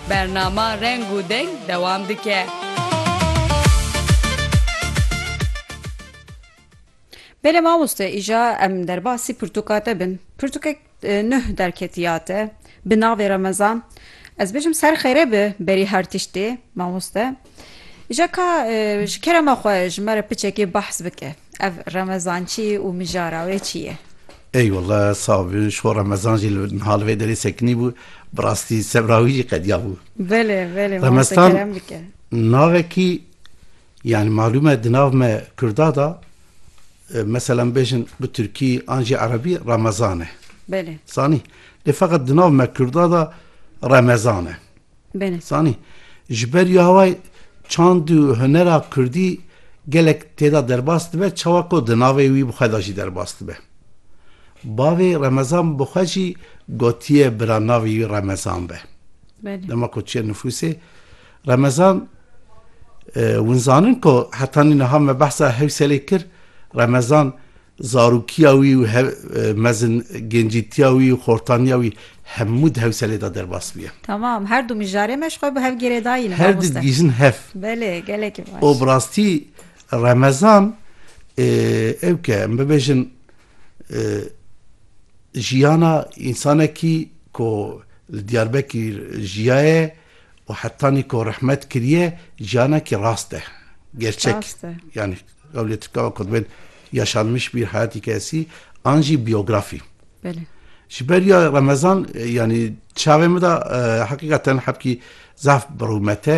Bernama Reng û Deng dewam dike. Belê mamoste îja em derbasî pirtûka te bin. Pirtûkek nuh derketiya te bi navê Remezan. Ez bêjim ser xêrê bi berî her tiştê mamoste. Îja ka ji kerema xwe ji me re piçekê behs bike. Ev remezançî û mijara wê çi ye? Ey wele sax bin ji xwe remezan jî li niha li vê derê sekinî bû bi rastî sebra wî jî qediya bû. Belê belê mase kerem bike. Remeztan navekî yanî malûm e di nav me kurda da meselan bêjin bi tirkî an jî erebî remezan e. Belê. Zanî lê feqet di nav me kurda da remezan e. Bêne. Zanî, ji ber ya wê çand û hunera kurdî gelek tê de derbas dibe, çawa ku di navê wî bi xwe de jî derbas dibe. Bavê Remezan bi xwe jî gotiye bira navê wî Remezan be. Dema ku çiye nifûsê, Remezan hûn zanin ku heta nî niha me behsa Hewselê kir, Remezan Zarokîya wî û mezin gencîtiya wî û xortaniya wî hemû di hewselê de derbas bûye. Tamam, her du mijarê me ji xwe bi hev gêrê dayîn. Her du digihîjin hev. Belê, gelekî baş. Û bi rastî remezan ew ke em bibêjin jiyana însanekî ku li Diyarbekîr jiyaye û hetanî ku rehmet kiriye jiyanekî rast e, gerçek e. Ewlê tika ku divên yaşanmış bir hayatî kesî an jî biyografî. Belê. Ji ber ya Remezan yanî çavê min de heqîqa ten hepkî zaf bi rûmete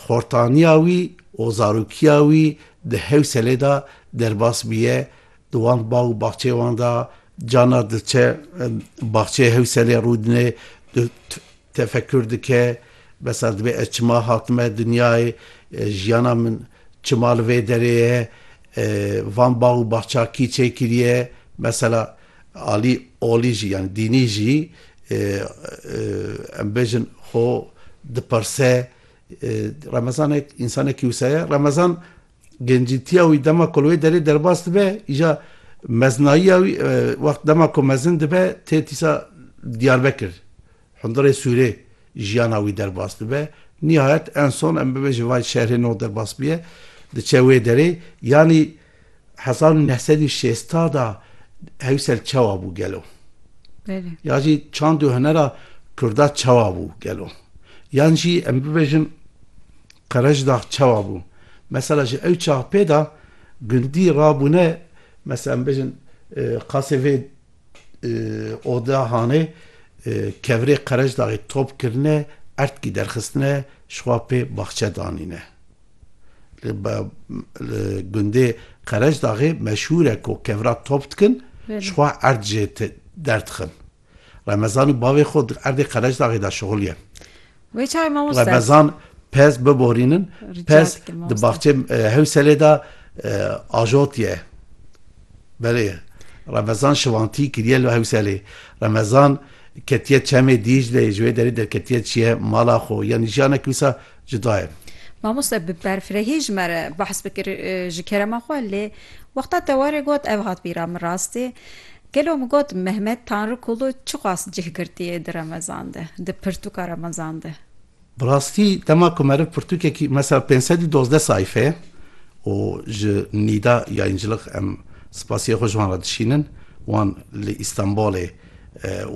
xortaniya wî û zarokiya wî di hewselê de derbas bûye di wan bag û baxçeyê wan de cana diçe baxçeyê hewselê rûdine Tefekkûr dike, besa divê ez çima hatime dinyayê, jiyana min çima li vê derê ye, van bax û baxça kî çêkiriye, mesela alî olî jî yanî dînî jî em bêjin xwe dipirse, remezanek însanekî wisa ye, remezan Gencîtiya wî dema ku li wê derê derbas dibe, îja meznayiya wî wext dema ku mezin dibe tê tîsa Diyarbekir, hundirê Sûrê jiyana wî derbas dibe. Nihayet en son em bibêjin vay şerê no derbas bûye diçe wê derê. Yanî hezar û neh sed û şêsta da Hewsel çawa bû gelo? Belê. Ya jî çand û hunera Kurda çawa bû gelo? Yan jî em bibêjin Qereçdax çawa bû? Mesela ji ew çax pê de gundî rabûne mesela em bêjin qasê vê oda hanê kevirê Qereçdaxê top kirine erdkî derxistine ji xwe pê baxçe danîne. Li gundê Qereçdaxê meşhûr e ku kevira top dikin ji xwe erd jê derdixin. Remezan û bavê xwe di erdê Qereçdaxê de şixul ye. Wê çay mamoste. Remezan pez biborînin. Pez di baxçeyê Hewselê de ajot ye. Belê Remezan şivantî kiriye li Hewselê. Remezan ketiye çemê Dîcleyê ji wê derê derketiye çiye mala xwe yanî jiyanek wisa cuda ye. Mamoste bi berfirehî ji me re behs bikir ji kerema xwe lê wexta te warê got ev hat bîra min rastê Gelo min got Mehmet Tanrıkulu çi xwast cih girtiyê di remezan de, di pirtûka remezan de? Bi rastî dema ku meriv pirtûkekî mesela pênc sed û dozdeh sayfe û ji Nîda Yayîncilix em spasiyê xwe ji wan re dişînin, wan li Îstanbolê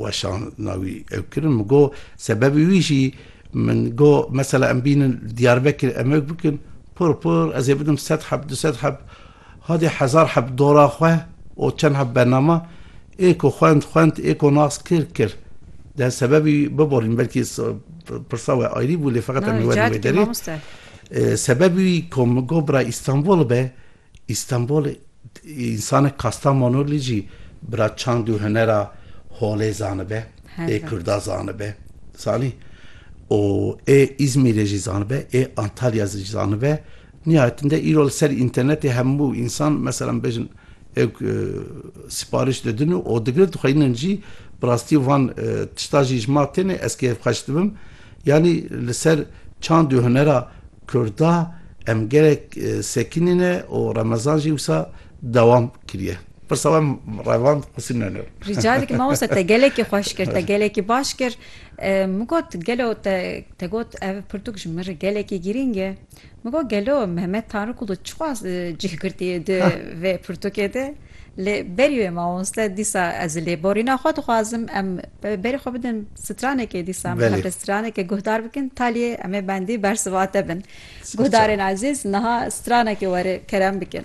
weşana wî ew kirin, min got sebebê wî jî min got mesela em bînin Diyarbekir em ew bikin, pir pir ez ê bidim sed heb, du sed heb. Xwedî hezar heb dora xwe û çend heb bernama ê ku xwend xwend ê ku nas kir kir. Deh sebebî biborîn belkî pirsa we ayrî bû lê feqet em ê werin wê derê. Sebebî wî ku min got bira Îstanbul be, Îstanbul însanek Kastamonulî jî bira çand û hunera holê zanibe, ê kurda zanibe zanî û ê Îzmîrê jî zanibe, ê Antalya jî zanibe. Nihayetinde îro li ser înternetê hemû însan meselan bêjin ewk sipariş didin û û digirin dixweynin jî bi rastî van tişta jî ji ma têne ez kêfxweş dibim yanî li ser çand û hunera kurda em gelek sekinîne û remezan jî wisa dewam kiriye. Pirsa we revand Husîn Nonor. Rica dikim mamosta te gelekî xweş kir te gelekî baş kir min got gelo te got ev pirtûk ji min re gelekî girîng e. Min got gelo Mehmet Tanrıkulu çi xwaz cih girtî di vê pirtûkê de? Lê berî wê mamoste dîsa ez li lêborîna xwe dixwazim em berî xwe bidin stranekê dîsa em hev li stranekê guhdar bikin taliyê em ê bendî bersiva te bin. Guhdarên ezîz niha stranekê were kerem bikin.